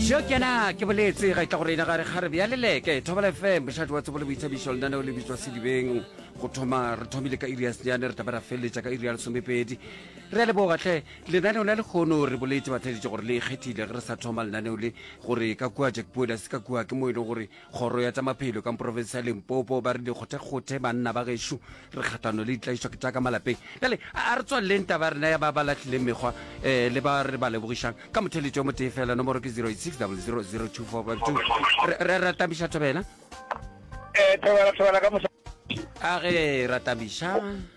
Bjo ke na ke boletse ga itla go reina gare gare bja leleke thobela fm bošate wa tsebo le boithabišo lenaneo le bitswa sedibeng go thoma re thomile ka iri ya senyane re tlabe ra feleletša ka iri ya lesomepedi re a leboga tlhe lenaneo la lekgono re boletse batlhaeditše gore le ikgethile ge re sa thoma lenaneo le gore ka kua jack boela se ka kua ke mo e leng gore Kgoro ya tša Maphelo ka profense ya Limpopo ba re dikgothekgothe, banna ba gešo re kgahlano le ditlaišwa ke tša ka malapeng. Bjale a re tswaleleng taba ya rena ya ba ba lahlileng mekgwa um le ba re ba lebogišang ka motheletšo o motee feela. Nomoro ke 0860000252. Re ra tamiša Thobela. Eh, Thobela, Thobela ka mosa. A ge ra tamiša.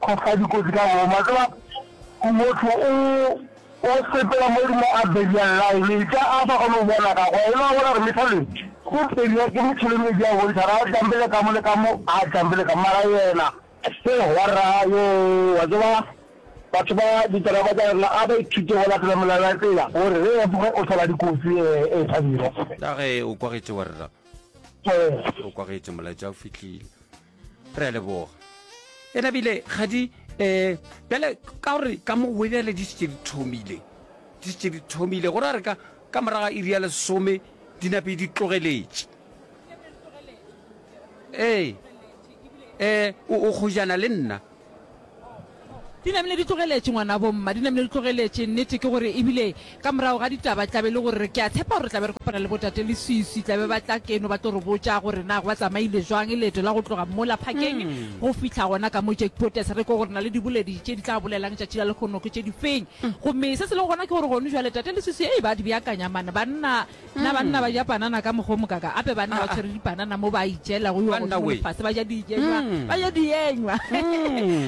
Go fa dikotsi ka boomo. A tseba motho o o sepela mo godimo a belial line e tla a sa kgone go bona ka kwa e le wa bona gore methaleng o beliwa ke methaleng e di a bontsha ra jambele ka mo le ka mo a jambele ka mara yena ke horra yo wa tseba batho ba diteraba tsa rena a ba ithute go latela melao ya tsela gore re efoge o thola dikotsi e thabile ka ge o kwagetse wa rra o kwagetse molaetsa o fitlhile re a leboga e nabile kgadi um bjale ka gore ka mo goe bjale di setse di thomile di setse di thomile gore a re ka ka moraga iri ya lesome di nape di tlogeletše ee um o kgojana le nna Di namile di tlogeletše, ngwanabo mma, di namile di tlogeletše. Nnete ke gore, e bile ka morago ga ditaba, tla be e le gore, ke a tshepa gore re tla be re kopana le botate le swiswi, tla be ba tla keno ba tlo re botša gore na go ba tsamaile bjang leeto la go tloga mola phakeng go fihla gona ka mo Jackpotes, re kwe gore na le diboledi tše di tla bolelang tšatši la lehono ke tše difeng. Gomme se se lego gona ke gore, gono bjale tate le swiswi, hei, ba di beakanya man, banna. Na banna ba ja panana ka mokgwa o mokaka? Gape banna ba tshwere dipanana mo ba itšeelago yo godimo lefase, ba ja dienywa, ba ja dienywa,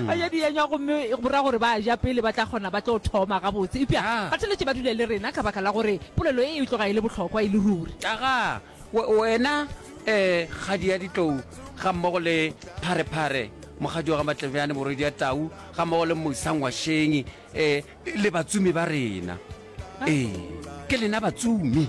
ba ja dienywa gomme go ra gore ba ja pele ba tla kgona ba tlo thoma gabotse. Eupša Bateletše ba dula le rena ka baka la gore polelo ye e tloga e le bohlokwa e le ruri. Aga wena kgadi ya ditlou gammogo le Pharephare, mokgadi wa ga Matlebjane, morwedi wa Tau, gammogo le Mosa Ngwašeng. Ee, le batsumi ba rena. Ee, ke lena batsumi.